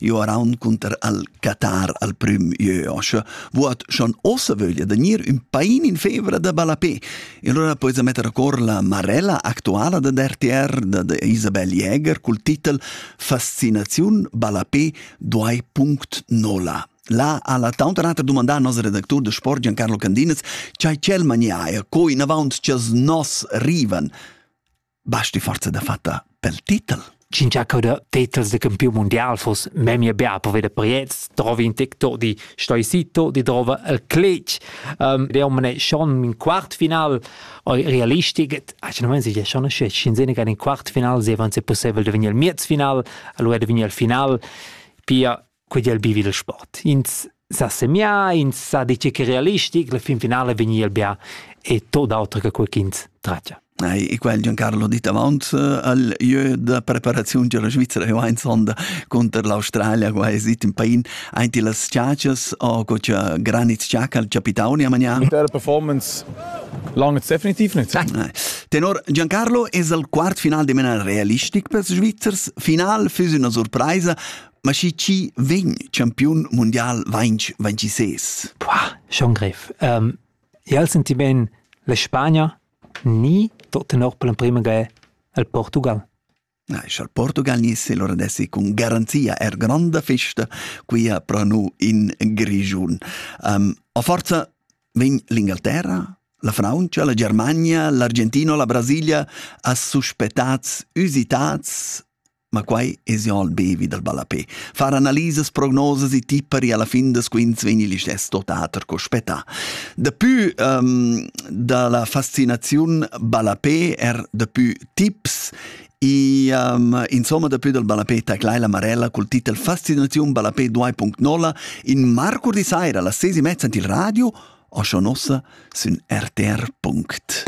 Io er cunter al Qatar al prüm ieu oscha, vuot schon ossa vöglia da gnir ün pain in fevra da balapé. E allora pois a metter a cor la marella actuala da DRTR da, da Isabel Jäger cul titel Fascinaziun balapé 2.0. La ha la tauntanata dumandà al nos redactur de sport Giancarlo Candinez, chai ch'el mania er co inavant chas nos rivan. Basti forza da fatta pel titel. Cincha cauda titels da campiun mundial foss memia bia per veder pariets, trovi in tic-toc di stoisito, di drova el clec. Um, der man è schon in Quartfinal realistic, ace non si è schon sce scenzene che in Quartfinal sevan se possibel de venir il Miezfinal, allora de venir il Final. Pia quei el bivi il sport. Ins sa semiar, ins sa dice che realistic, la fin finale vegni el bia e tot auter che quei ch'ins tragia. E quel Giancarlo dit avant eh, al jeu da preparaziun della Svizzera e ein sonda contro l'Australia qua è sit in pain einti las ciacias o co c'è granit ciaca al capitani a mañan der performance langt definitiv nicht Tenor Giancarlo es al quart final de mena realistic per Svizzers final füs una surpresa Ma schi chi vegn campiun mundial 2026? Poah, schon grev. Um, io al senti ben la Spagna ni tot tenor per l'emprima ga al Portugal. Na, al Portugal ni se lora dessi con garanzia er granda festa qui a pranu in Grigiun. Um, a forza vegn l'Ingalterra, la Francia, la Germania, l'Argentino, la Brasilia a suspettats, usitats Ma quai es jo al bevi dal ballapè. Far analisas, prognosas e tipper e alla fin da squinz vegni listess totater co spettà. Dapü um, da la fascinaziun ballapè er dapü tips E um, insomma, dapü dal ballapé taclai la Marella col titel Fascinaziun ballapé 2.0 in marcur di saira alla sesi mezza il radio o schon ossa sün rtr.it.